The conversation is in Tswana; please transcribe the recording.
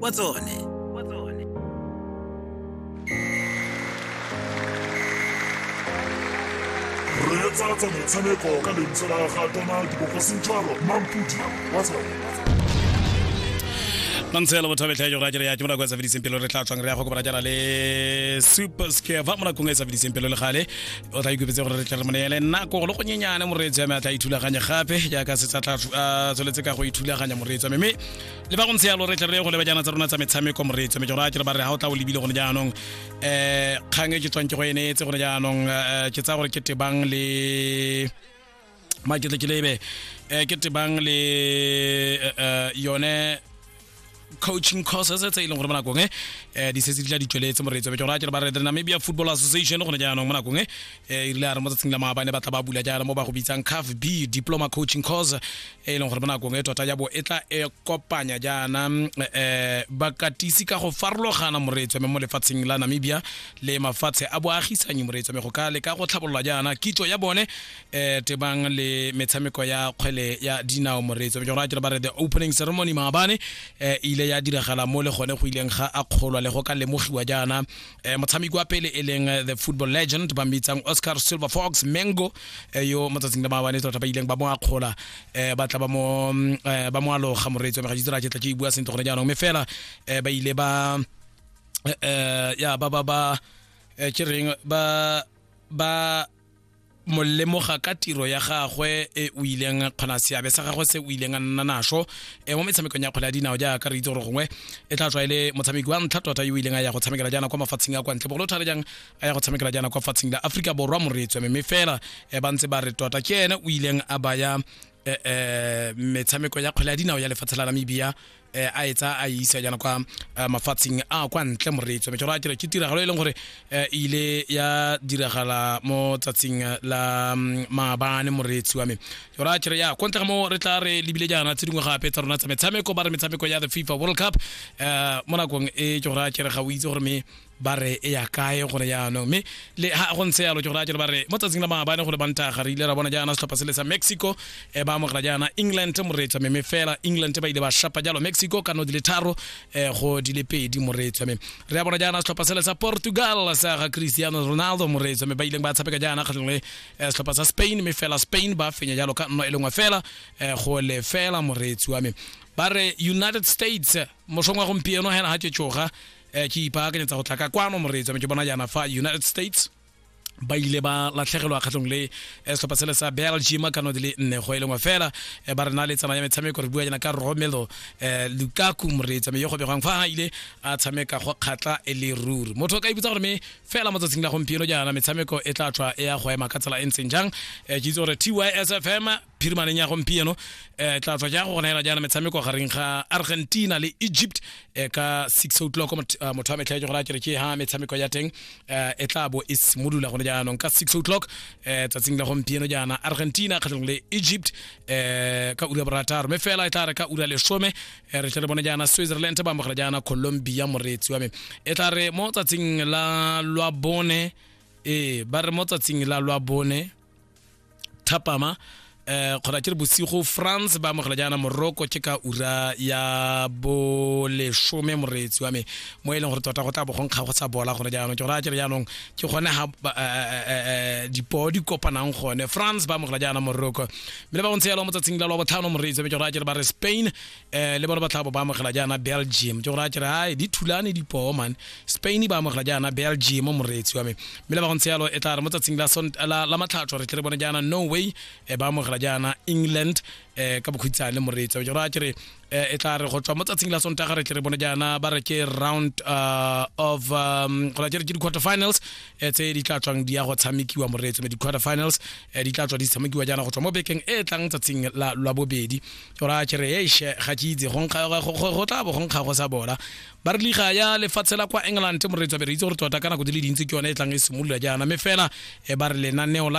wa tsone reetsa tsa motshameko ka lentswe la ga tona dibogosing jalo mampudi wa tsone la ntshela botho betlha jo ga jere ya ke monako e sa fediseng pelo re tla tswang re ya go kopana jana le super scare fa monakong e sa fediseng pelo le gale o tla ikopetse gore re tle re moneele nako go le go nyenyane moreetsi ya me a tla ithulaganye gape jaaka se tsa tla tsholetse ka go ithulaganya moreetsi ya me mme le ba go ntse yalo re tle re go leba jana tsa rona tsa metshameko moreetso mme jora ke re ba re ga o tla o lebile gone jaanong um kgang e ke tswang ke go ene tse gone jaanong um ke tsaya gore ke tebang le maketle ke lebe um ke tebang le um yone coaching courses tse e leng gore mo nakong e eh, di setse di tla di tsweletse moreetso beke gore a kere ba re the namibia football association gone jaanong mo nakong e eh, e rile a re mo tsatsing la maabane ba tla ba bula jaana mo ba go bitsang caf b diploma coaching course e e leng gore mo nakong e tota ya bo e tla e kopanya jaana um bakatisi ka go farologana moreetswame mo lefatsheng la namibia le mafatshe a boagisanyi moreetswame go ka leka go tlhabololwa jaana kitso ya bone um tebang le metshameko ya kgwele ya dinao moreetswame ke go raya ke re ba re the opening ceremony maabane um ile ya diragala mo le gone go ileng ga a kgolwa le go ka lemogiwa jaana eh, motshameki wa pele e leng eh, the football legend ba mmitsang oscar silver fox mango eh, yo mo tsatsing la maabane tota ba ileng ba mo akgola eh, ba tla ba mo mm, eh, ba mo aloga moreetsi wa megaditsela ke tla ke e bua sentle gone jaanong mme fela eh, ba ile ba eh, eh, ya ba ba ba eh, ke reng ba ba mo lemoga ka tiro ya gagwe e o ileng a kgona seabe sa gagwe se o ileng a nna naso e mo metshamekong ya kgwele ya dinao jaaka re itse gore gongwe e tla tswa e le motshameki wa ntlha tota yo o ileng a ya go tshamekela jaana kwa mafatsheng a kwa ntle bogolo thata jang a ya go tshamekela jaana kwa fatsheng la aforika borwa moreetswe mme fela e ba ntse ba re tota ke ene o ileng a baya eh, eh, metshameko ya kgwele ya dinao ya lefatshe la namibia eh, a etsa a e isa jana kwa eh, mafatsheng a kwa ntle moreetso mme a ke tiragalo e leng gore eh, e ile ya diragala mo tsatsing eh, la mm, maabane moreetsi wa me jora a kere ya ko ntle ga mo re tla re lebile jaana tse dingwe gape tsa rona tsa metshameko ba re metshameko ya the fifa world cup eh, mo nakong e jora a kere ga o itse gore me ba re e ya kae gore yaanong mme le ha go ntse yalo ke gore a jalo ba re mo tsatsing la maabane go le bantaga re ile ra bona jaana setlhopha se le sa mexico um ba amogela jaana england moreetswa meme fela england ba ile ba shapa jalo mexico ka no di le tharo um go di le pedi moreetswa me re a bona jaana setlhopha se le sa portugal sa ga cristiano ronaldo moreetswa me ba ileng ba tshameka jaana kgatlhong le eh, setlhopha sa spain mme fela spain ba fenya jalo ka nno e lengwe fela um go le fela moreetsi wa me ba re united states mosong wa gompieno hena ga tšetšoga eh, ke ipaakanyetsa go tla ka kwano moreetsi me ke bona jaana fa united states ba ile ba latlhegelwa kgatlhong le eh, setlhopha sele sa belgium ka node le nne go e lengwe fela eh, ba re na le tsana ya metshameko re bua jana ka romelo eh, lukaku moreetsa me yo go begwang fa a ile a tshameka go kgatla e le ruri motho o ka iputsa gore me fela mo tsatsing la gompieno jaana metshameko e tla tswa e ya go ema ka tsela e ntseng jang ke itse gore tysfm phirimaneng ya gompieno eh tla tswa ja go gona hela jaana metshameko gareng ga argentina le egypt eh, ka 6 o'clock mot- eh, motho wa metlha ke gore a kere ke ha metshameko ya teng eh, e tla bo e simolola gone jaanong ka 6 o'clock eh, tsatsing la gompieno jaana argentina kgatlhanong le egypt eh, ka ura ya borataro mme fela e tla re ka ura lesome eh, re tle re bone jaana switzerland ba amogela jaana colombia moreetsi wa me e tla re mo tsatsing la lwa bone ee ba re mo tsatsing la lwa bone thapama eh kgona ke re bosigo france ba amogela jaana moroko ke ka ura ya bolesome moreetsi wa me mo e leng gore tota go tla bogonkga go sa bola gone jaanong ke gore a kere jaanong ke gone ga eh, eh, eh, dipoo di kopanang gone france ba amogela jaana moroko mme le ba go ntse yalo mo tsatsing la lwa botlhano moreetsi wa me ke gore a kere ba re spain eh le bona ba tla bo ba amogela jaana belgium ke go raya kere ai di thulane dipoo man spain ba amogela jaana belgium moreetsi wa me mme le ba go ntse yalo e tla re mo tsatsing la sont- la la matlhatso re tle re bone jaana norway eh, ba amogela jaana england eh, ka bokhutshane moreetsi wa me ke go raya kere eh, e tla re go tswa mo tsatsing la sontaga re tle re bone jaana ba re ke round uh, of um, go raya kere ke di-quarter finals eh, tse di tla tswang di ya go tshamekiwa moreetsi me di-quarter finals eh, di tla tswa di tshamekiwa jaana go tswa mo bekeng e e tlang tsatsing la la bobedi ora ke re eiše ga ke itse go tla bo go nkga go sa bola ba re liga ya lefatshe la kwa england moreetswa be re itse gore tota ka nako di le dintsi ke yone e tlang e simolola jaana mme fela e ba re lenaneo la